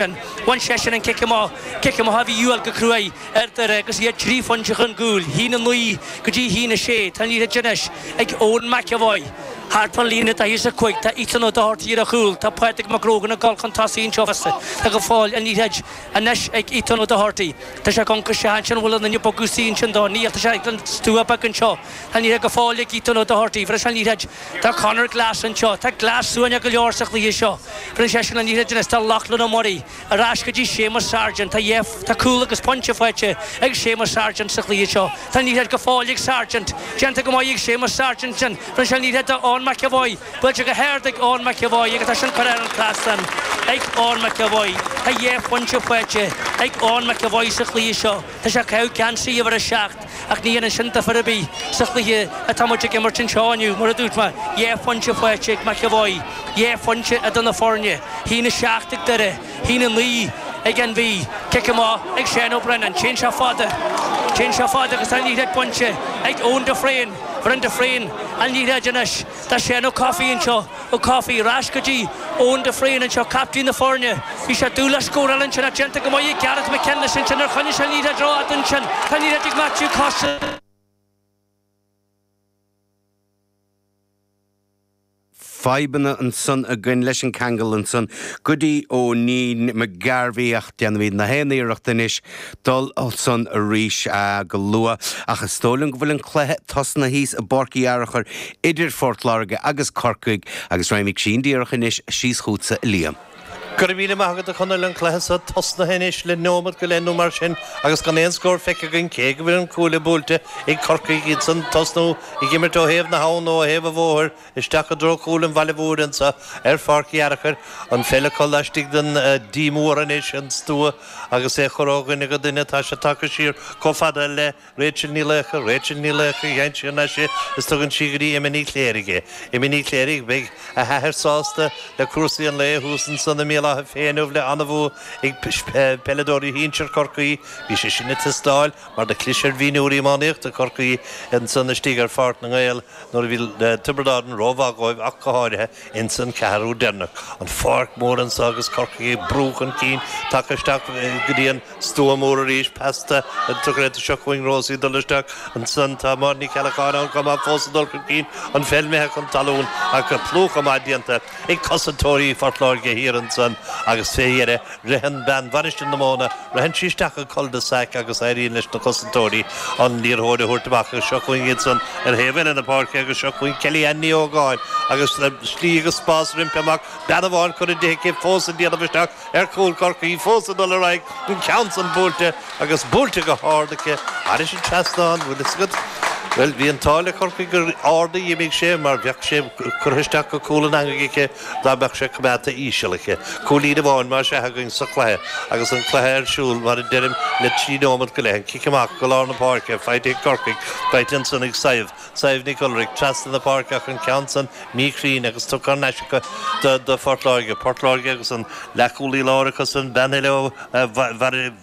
Bhain seisean an cic amach, cic amach a bhí a dhíobháil go cruaidh ar Dhoire agus iad trí phointe chun cúil, a haon a 9 go dtí a haon a 6. Tá an liathróid anois ag Eoin McEvoy. Thart fán líne daichead is a 5. Tá Ethan O'Doherty ar a chúl. Tá Pádraig Mac Grógan ag dul chun tosaigh anseo fosta. Tá go fóill an liathróid anois ag Ethan O'Doherty. Tá sé ag amhanc isteach ansin an bhfuil aon duine ag bogadh istigh ansin dó? Níl, tá sé ag an stua beag anseo. Tá an liathróid go fóill ag Ethan O'Doherty. Bheir sé an liathróid do Conor Glass anseo. Tá Glass suaimhneach go leor sa chluiche seo. Bheir seisean an liathróid anois do Lachlan Ó Muirí ar ais go dtí Séamus Sargent. Tá Tá cúl agus pointe faighte ag Séamus Sargent sa chluiche seo. Tá an liathróid go fóill ag Sargent. Déanta go maith ag Séamus Sargent sin. Bheireann sé an liathróid do Eoin McEvoy. Buailte go hard ag Eoin McEvoy agus tá sin curtha thar an trasnán ag Eoin McEvoy. Tá dhá phointe faighte ag Eoin McEvoy sa chluiche seo. Tá sé ag caitheamh geansaí uimhir a seacht. Ach ní hionann sin ar chor ar bith sa chluiche atá muid ag imirt anseo inniu. Mar a dúirt mé, dhá phointe faighte ag McEvoy, dhá phointe idir na foirne, a haon a seacht ag Doire, a haon a naoi ag an Mhí. Cic amach ag Seán Ó Braonáin. Téann sé fada. Téann sé fada agus tá an liathróid bainte ag Eoin de Fréine. Bheireann de Fréine an liathróid anois. Tá Seán Ó Cofaigh anseo, Ó Cofaigh, ar ais go dtí Eoin de Fréine anseo, captaen na foirne. Bhí sé ag dul a scóráil ansin, ach déanta go maith ag Gareth McKinless ansin ar choinnigh sé an liathróid ró-fhada ansin. Tá an liathróid ag Matthew Costello. fadhbanna ansan againn leis an ceangal ansan go dtí Owenie McGarvey. Déanfaimid na haon iarracht anois dul ansan arís go luath, ach is dóigh liom go bhfuil an cluiche tosnaithe thíos i bPáirc Uí Fhearchair idir Phort Láirge agus Corcaigh, agus raghaimid ansin díreach anois síos chútsa, a Liam. Go raibh míle maith agat, a Chonaill, an cluiche so tosnaithe anois le neomat go leith nó mar sin agus gan aon scór feicthe againn, cé go bhfuil an cuaille buailte ag Corcaigh iadsan tosnú ag imirt ó thaobh na habhann nó ó thaobh an bhóthair, Isteach i dtreo chúl an bhaile mhóir anseo ar Pháirc Fhearchair, an pheil acu laistigh den D mór anois, an stua, agus é á chur ó dhuine go duine, tá sé tagtha siar chomh fada le Rachel Ní Laocha, Rachel Ní Laocha téann siar na sé is tugann sí go dtí Emma Ní Chléirigh é. Emma Ní Chléirigh, beidh a hathair sásta le cúrsaí an lae thuas ansan i mBéal Átha Féich inniu le an-bhua ag peileadóirí shinsir Chorcaí, bhí sé sin ag teastáil mar do chlis ar mhionúir iománaíochta Chorcaí ansan istigh ar Pháirc na nGael. nuair a bhí Tiobraid Árann rómhaith dhóibh ach go háirithe ins an ceathrú deireanach, an pháirc mhór anso agus Corcaigh ag brú chun cinn, tagtha isteach go dtí an stua mór arís, peas do Corkery seo chugainn Rosie ag dul isteach ansan, tá Máire Ní Cheallacháin ann chomh maith fós ag dul chun cinn, an pheil imithe chun talún ach plúchadh maith déanta ag cosantóirí Phort Láirge thiar ansan agus fé dheireadh Ritheann bean Mhainistir na Móna, ritheann sí isteach an cul de sac agus éiríonn leis na cosantóirí an liathróid a thabhairt amach agus seo chugainn iadsan ar thaobh eile na páirce agus seo chugainn Kelly-Anne Ní Ógáin agus slí agus spás roimpi amach, bean amháin curtha di aici fós ag déanamh isteach ar chúl Chorcaí, fós ag dul ar aghaidh, an ceann san buailte agus buailte go hard aici, thairis an trasnán, bhfuil fhios agat, bhuel, bhí an t-ádh le Corcaigh gur ard a dh'imigh sé mar bheadh sé curtha isteach go cúl an eangaigh aici. Dá mbeadh sé coimeádta íseal aici, cúilín amháin más ea againn sa chluiche agus an cluiche ar siúl, mar a deirim, le trí nóimeat go leith, an cic amach go lár na páirce faighte ag Corcaigh, faighte ansan ag Sadhbh, Sadhbh Nic Ualraic, trasna na páirce ach an ceann san míchruinn agus tugtha thar n-ais acu do Phort Láirge. Port Láirge agus an leathchúlaí láir acusan, bean eile ó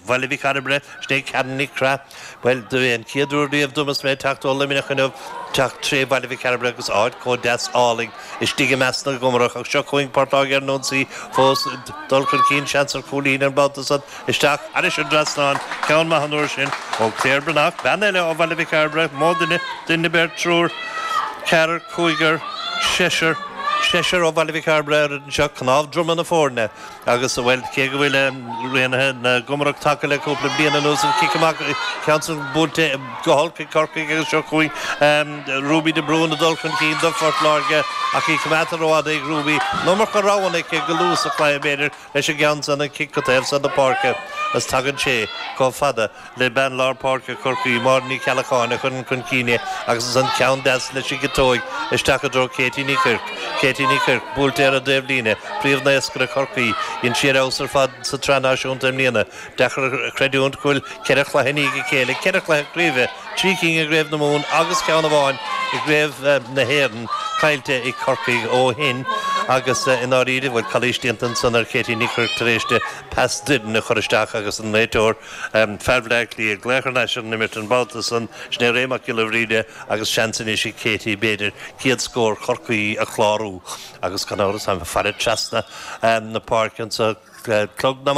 Bhaile Mhic Cairbre, sin í Karen Nic Craith. Bhuel, don chéad uair riamh dom is mé ag teacht ó Luimneach inniu, teacht tré Bhaile Mhic Cairbre agus áit chomh deas álainn istigh i measc na gComarach ach seo chugainn Port Láirge ar an ionsaí fós, dul chun cinn seans ar chúilín ar an mbabhta san, isteach thairis an dtrasnán, ceann maith an uair sin ó Claire Breathnach, bean eile ó Bhaile Mhic Cairbre, mó duine, duine, beirt, triúr, ceathrar, cúigear, seisear, seisear ó Bhaile Mhic Cairbre ar an bhfoireann seo, cnámh droma na foirne. Agus, bhuel, cé go bhfuil Raonaithe na gComarach tagtha le cúpla bliain anuas, an cic amach, ceann san buailte go holc ag Corcaigh agus seo chugainn Ruby de Brún ag dul chun cinn do Phort Láirge ach í coimeádta rófhada ag Ruby, iomarca roghanna aici go luath sa chluiche, b'fhéidir, leis an gceann san, an cic go taobh san na páirce, agus tagann sé chomh fada. le bean lár páirce Chorcaí, Máire Ní Cheallacháin, a chuireann chun cinn é agus ansan ceann deas leis an gciotóig isteach i dtreo Katie Ní Chuirc. Katie Ní Chuirc, buailte ar an dtaobhlíne, príomhnaoscaire Chorcaí, dhein sí ar fheabhas ar fad sa tSraith Náisiúnta i mbliana. Deacair a chreidiúint go bhfuil ceithre chluiche i ndiaidh a chéile, ceithre chluiche craoibhe, trí cinn i gcraobh na Mumhan agus ceann amháin i gcraobh na hÉireann, caillte ag Corcaigh ó shin agus i ndáiríre, bhuel, calaois déanta ansan ar Katie Ní Chuirc tar éis di pas doirn a chur isteach agus an réiteoir, Fear Bhleá Cliath ag glaoch ar ais ar an imirt an babhta san, sin é Ray Mac Giolla Bhríde agus seans anois ag Katie, b'fhéidir, céad scór Chorcaí a chlárú agus gan amhras táim ag faire trasna na páirce anseo clog na.